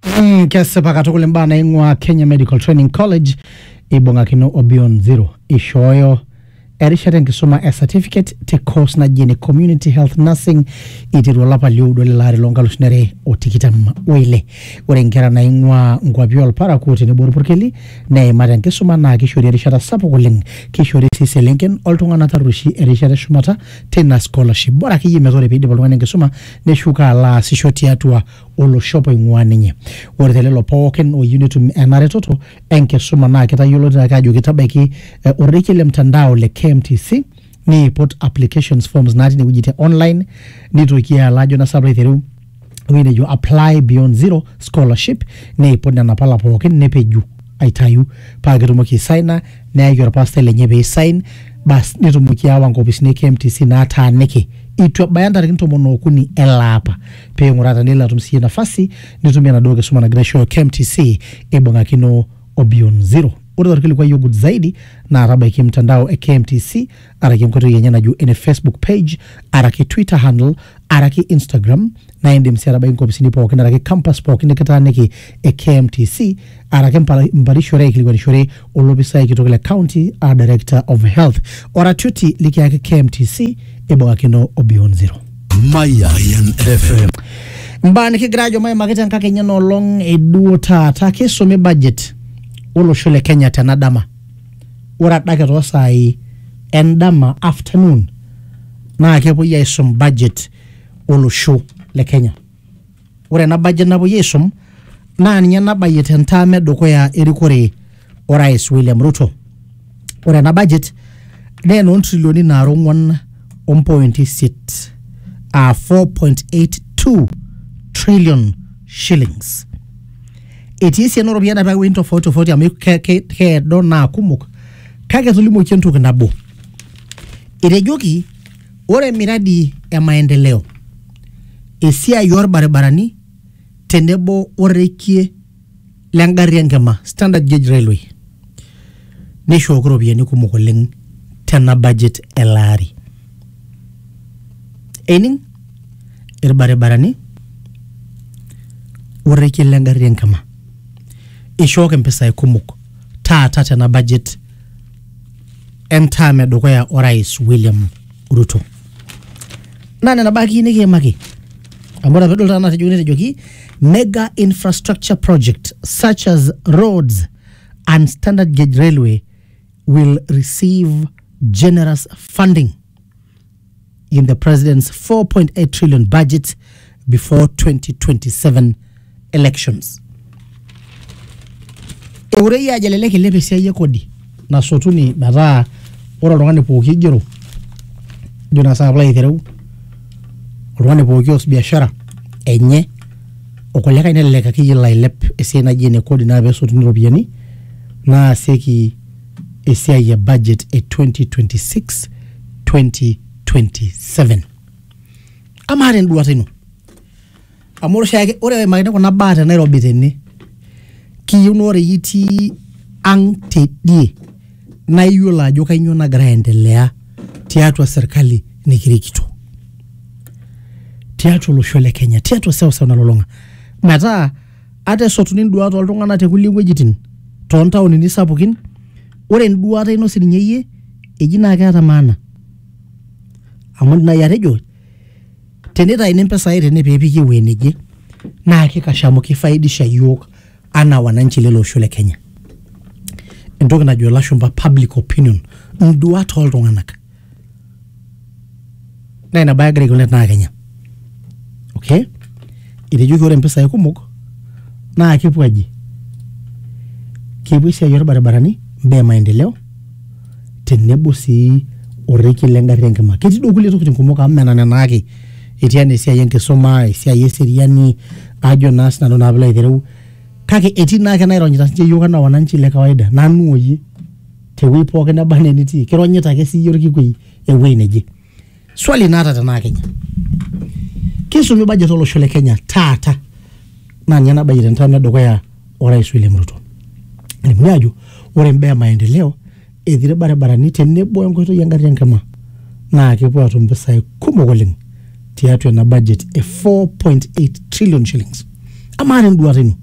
Mm, kesipa katukul imbaa naing'ua Kenya Medical Training College ibung'akino o Beyond Zero ishooyo erishata enkisuma e certificate te course naji ene community health nursing iteru olapa lioudo lelo ari loonkalusuni are o tikitam oile ore inkera naing'ua nkuapi olparakuo tenebo orpurkeli neimat enkisuma naa kishori erishata sapuk oleng kishori sii iselenken oltung'anak tarrueshi erishata eshumata teina scholarship bora akeyie metaa ore piidip oltung'ani enkisuma neshuko alo aasisho tiatua oloshop oing'uaa ninye. Ore te lelo pookin ooyieu netum ena retoto enkisuma naa kitayioloitoi ake ajoki tabaiki eh, orrekie le mtandao le KMTC niiput applications forms natii ine wueji te online nitoki alo ajo nasa alo aiteru ewueji nejo apply beyond zero scholarship niiput nena pala pookin nepeju aitayu paa ketumoki aisaina neyaki orpastai lenye pee isain bas netumoki aawa nkopisini e KMTC naataaniki itu ebaya ntarikini tomon ookuni ele apa. pee ing'uraa tenelo atum siiyie nafasi nitumie enaduo kisuma nagira aishooyo KMTC ibung'akino o Beyond Zero. Ore torkilikuai ogut zaidi naa tabaiki mtandao e KMTC araki enkoitoi enye najo ene Facebook page araki Twitter handle araki Instagram naa indim sii atabaiki nkopisini pookin araki campus pookin nikitaaniki e KMTC araki mpala- mparishore aikilikuanishore olopisai kitok le county a director of health oratioti likiyaki KMTC eibung'akino o Beyond Zero. Mayan FM. Mbaa nikigira ajo maimaki tenkakenya ena olong eduo taata kisumi budget olosho le Kenya tena dama. Ore adake toosaai endama afternoon naa kepuoi aisum budget olosho le Kenya. Ore ena budget napuoi aisum naa ninye nabayie te ntaam e dukuya erikore orais William Ruto. Ore ena budget naa enoo ntrilioni naara ong'wan o mpointi isiet aa 4.82 trillion shillings. Etii esiana ooropiyiani naapiki iwuejitin tofauti tofauti amu ke- ke- keedo naa kumok kake etolimuoki entoki nabo, etejoki Ore miradi e maendeleo, esiai oo lbaribarani tenebo o rrekie le ngarri e nkima, standard gauge railway, neishooki irropiyiani kumok oleng tena budget ele ari. Ening? Ilbaribarani o rrekie le ngarri e nkima. Eishooki mpisai kumok taata tena budget entaam edukuya orais William Ruto. Naa nena baa akeyie nikiimaki amu ore apa edol taata natejoki netejoki mega infrastructure project such as roads and standard gauge railway will receive generous funding. in the president's 4.8 trillion budget before 2027 elections. Eurei ajo elelek ilep esiai e kodi nasotuni metaa ore oltung'ani pooki oigero ajo naa saapa aitereu oltung'ani pooki oas biashara enye okulikae nelelek akeyie elo ailep esiai naji ene kodi naa pesotuni iropiyiani naasieki esiai e budget e 2026-2027. Amaa tenduata ino, amu ore oshiake ore eimakini kuna baa te Nairobi tene, kiyieu naa ore iyie itii ang tidie naa iyiolo ajo kainyoo nagira aendelea tiatua serkali nikirikito. Tiatua olosho le Kenya, tiatua seuseu nalulung'a. Metaa Ata esotuni nduat oltung'ana te kulie wuejitin too ntaonini sapukin, ore enduata ino sii ninye iyie eji naa keeta maana. Amu indim naaji atejo tenitayuni mpisai tene pee epiki ewueji neje naa kikash amu kifaidisha iyiook anaa wananchi lele osho le Kenya. Entoki najo ilashumpa public opinion, induat oo ltung'anak. naa ina bae egira aikilikwan tenaa kenya. okay? etejoki ore mpisai kumok naa kepuo aji kepuo esiai orbaribarani mbaa e maendeleo tenebo sii orrekie le ngarri enkima ketii duo kulie tokitin kumok amu mena nena ake etii enaa esiai enkisuma esiai eseriani ajo naa sinanu naa piilo aitereu kake etii naake naironyita sinche iyiook anaa wananchi le kawaida nanu oyie. tewuei pookin neba anaa enitii kironyita ake siiyie orkikui ewuei neje swali naata tenaa kenya kisumi budget olosho le kenya taata naa ninye nabayie tentam edukuya orais William Ruto elimuni ajo ore imbaa e maendeleo etii irbaribarani tenebo enkoitoi engarri enkima naa kepuo atum impisai kumok oleng tiatua ena budget e 4.8 trillion shillings amaa tenduata ino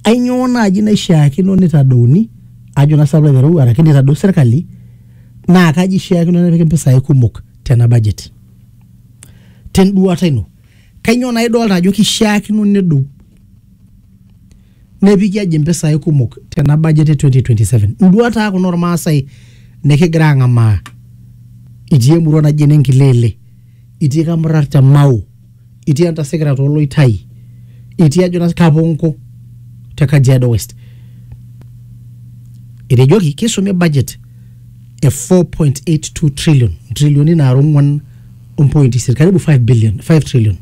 ainyoo naaji naishiakino nitadouni ajo naa sababu aiteru araki nitadou serkali naa kaji ishiakino nepiki mpisai kumok tena budget tenduata ino kainyoo naa idolta ajo kishiakino nedou nepiki aji mpisai kumok tena budget e 2027 nduat aa kuna ormaasai nikigira ang'amaa itii emurua naji ene nkilele itii kamurrar te mau itii entasekera too loitai itii ajo naa kaponko te kajiado west etejoki kisumi budget e 4.82 trillion ntrilioni naara ong'uan ompointi isiet karibu 5 billion 5 trillion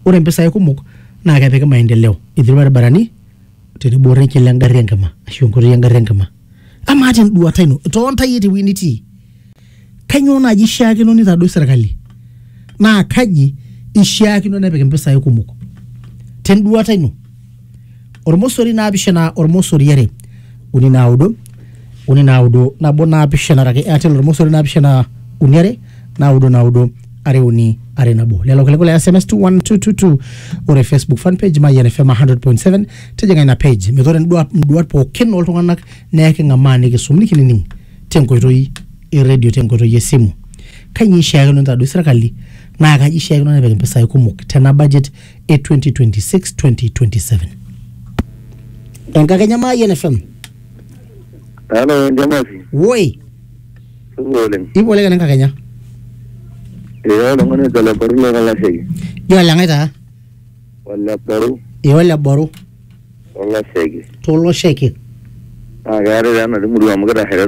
ore mpisai kumok naa kepiki maendeleo etii irbaribarani tenebo orrekie le ngarri enkima ashu enkoitoi engarri enkima amaa tenduata ino toontae tewueji nitii Kainyoo naaji eishiakino neitadou serkali naa kaji eishiakino nepik impisai kumok tenduata ino? Ormosori naapishana ormosori are uni naudo uni naudo nabo naapishana araki Airtel ormosori naapishana uni are naudo naudo are uni are nabo. Lelo kiliku le SMS 21222 ore Facebook fan page Mayian FM 100.7 tijing'a ina page metaa ore induat pookin ooltung'anak naa eking'amaa nikisum nikinining'. tenkoitoi e radio tenkoitoi esimu kainyioo ishiakino nitadoi sirkali naa kaji ishiakino nepik impisai kumok tena budget e 2026-2027 enkakenya maayian fm Halo, Njamasi. woi Supa oleng. ipoleka na enkakenya Ee oltung'ani ojo Leparu le Kalaseki. jo oleng'ae taa Oleparu ee oleboru Olaseki. tolosheke Naa keetae taa ena murua amu kitasheita